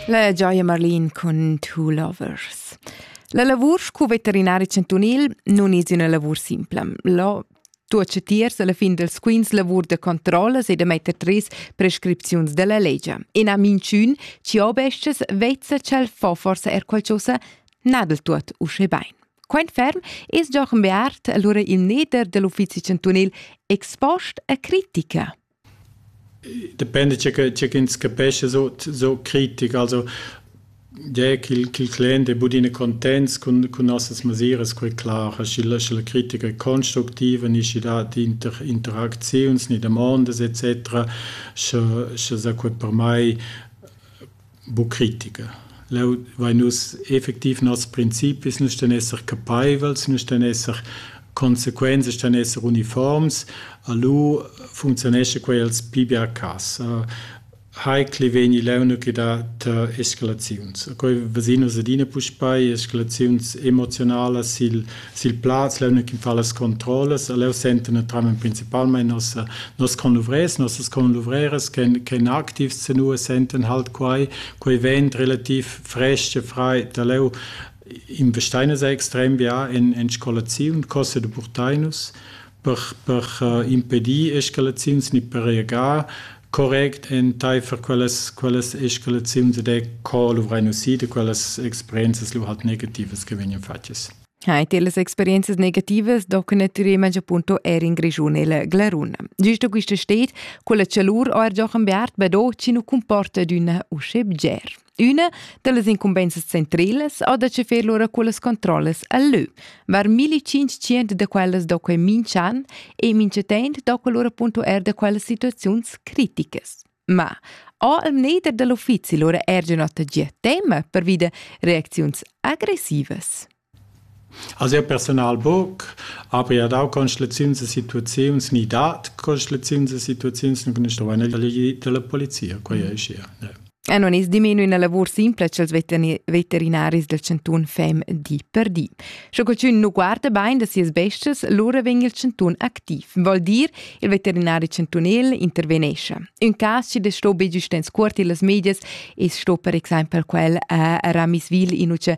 La gioia Marlin cun Two Lovers. La lavur scu veterinari chantunil non es üna lavur simpla. Lo tuots tiers alla fin dels quints lavur de controllas e de metter tris prescripziuns della legge. E na minchün ci obesces vezza ch'el fa forse er qualcosa na del tuot usche bain. Quaint ferm es Jochen Beart allura il neder dell'uffizi chantunil expost a critica. Dependa tgè che tgè ch'ins capescha so so critic, also tgè ch'il ch'il client è budina contents cun cun nossas masiras quai clar, sch'la scha la critica è constructiva ni schi dat inter interacziuns ni damondas et cetera, scha scha sa quai per mai bu critica. Leu vein nus effektiv nos principis, nus stan esser capeivels, nus stan esser consequenze stan esser uniforms, a lu funzionesce quei als pli bia cas. Hai cliveni leuna che dat escalaziuns. Quei vesinus adina puspei, escalaziuns emozionalas sil sil plaz leu che fa las controllas e leu senten naturalmein principalmein nos nos conluvrers, nossas conluvreras che che activs senua senten halt quei quei vent relativ frestg e frei da leu in vestainas extrem bia en en scolaziun cossa de Burtainus per, per impedir escalaziuns ni per reagar correct enteifer quellas, quellas escalaziuns ed è co luvrein usì da quellas experienzas lu halt negativas che vegnan fatgas. Hai te las experienzas negativas do che natüremente appunto er in Grischun il Glarun. Giusto quista steet, quella chalur o er Jochen Beart bedò ci nu comporta d'una usce bger. Üna dallas incumbensas centrelas ha da chefer lura quellas controllas a lö. Var 1500 da quellas do quei minch'an e minchatent do quel lura punto er da quellas situaziuns criticas. Ma ha il mneder dall'uffizi lura er già nota gia tema per vida reacziuns aggressivas? Ha siu personal buc, ha pia dau constelaziuns e situaziuns ni dat constelaziuns e situaziuns nun construein el dalla glied dalla polizia, quei ei schia. E non is dimenu ina lavur simpla ch'els veterinaris del cantun fem di per di. Sche qualcun nu guarda bain da sias bestias, lura vegn il cantun activ. Vol dir, il veterinari cantunel intervenesce. Un cas che sto be giustens cuort illas medias e sto per exempel quel a Ramiswil in uce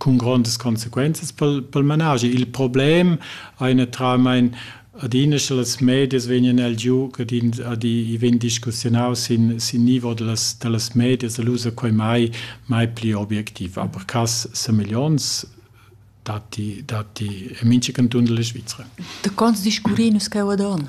cun grondas consequenzas pel, pel managi. Il problem ei naturalmein adina sche las medias vegnan el giu ad in, ad i vegn discussiunau sin, sin nivo dallas, dallas medias, el usa quei mai, mai pli objectiv. Aber cass semeglions datti, datti en mintga canton della Svizzera. Da cons discurrin nus cheu ad on?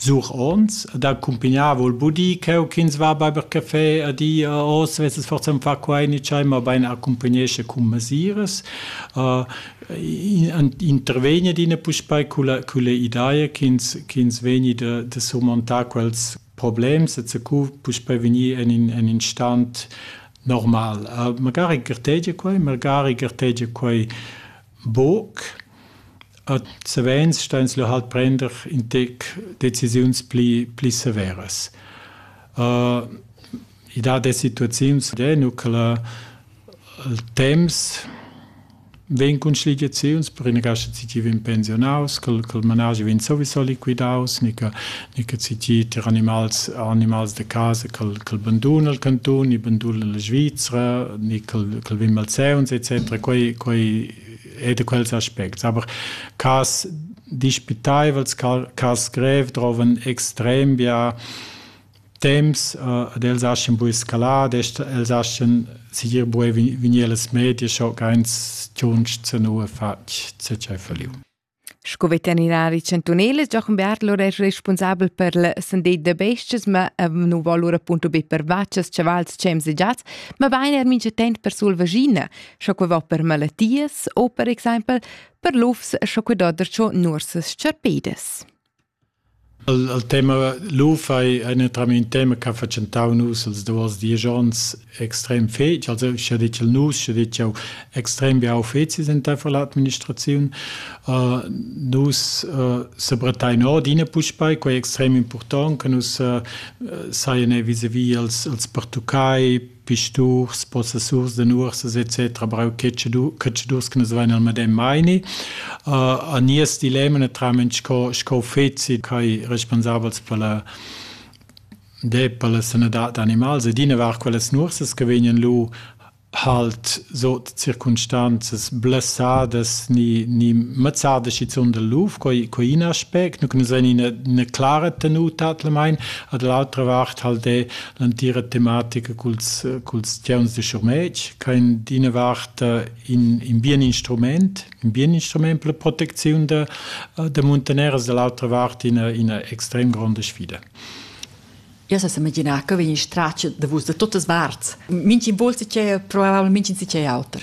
Sur ons ed accumpignar voul bu dir ch'eu ch'ins va baiver cafè a di a hoz vessas forsa ün far quai nichai, mabain accumpagnescha cun masiras. Intervegner dina puspei culla culla ideia ch'ins ch'ins vegni da da surmontar quels problems e co puspei vegnir en in en in stan normal. Magari gartegia quai, magari gartegia quai Buc. Ad savens ston ins lu halt prender in tec decisiuns pli pli severas. I dat e situaziuns eh nu che la il temps vegn cun schligiaziuns, per ina cascha tgi vegn pensionaus, che il managi vegn sowieso liquidaus, ni che e che citi tir animals animals de casa col col bandun al cantun e bandun la Svizzera ni col col vim al Seuns etc quei quei è de quels aspects aber cas dispitaivels cas grev troven extrem bia temps uh, ad els aschen bu escalat els aschen sigir bu vinir las medie schon ganz tunsch zu nur fatg zu feliu Sco veterinari chantunel es Giochen Bertler eir respunsabel per la sandet da bes-chas, ma nu vo lura appunto be per vachas, chavals, chems e giats, mabain eir mincha temp per sulvaschina, sco que vo per malattias o per exaimpel per lufs, sco que do darcho nuorsas s-charpedas. El el tema lo-fi ei natiralmein tema ch'ha fatschentau nus els duos diesch ons extrem fetg. Also scha detg el nus, scha detg jau extrem biau fezis enteifer l'administraziun. Nus sebrattain ord ina puspei, quei extrem impurtont che nus sajan vis-a-vis als els pertuccai pisturs, possessurs de nuorsas etc. brau cacciadurs che nus vein al medem meini. Uh, a nies dilemma naturalment sco, sco fezi kai responsabels per la de per la sanadad d'animals ed ina var quelles nursas che vegnan lu halt so circumstanzas blessadas ni ni mazzada schizun del luf coi coi in aspect nu que nus in eine klare tenuta at mein ad l'altra vart halt de l'antira tematica culs, culs tgeuns de schurmetg, che in d'ina vart in, in bien instrument, in bien instrument per la protecziun de, de muntaneras, dall'altra vart ina, ina extrem gronda sfida. Io se immaginava che vegni straccio da vus da tutte parts. Minci volsi c'è, probabilmente si c'è altro.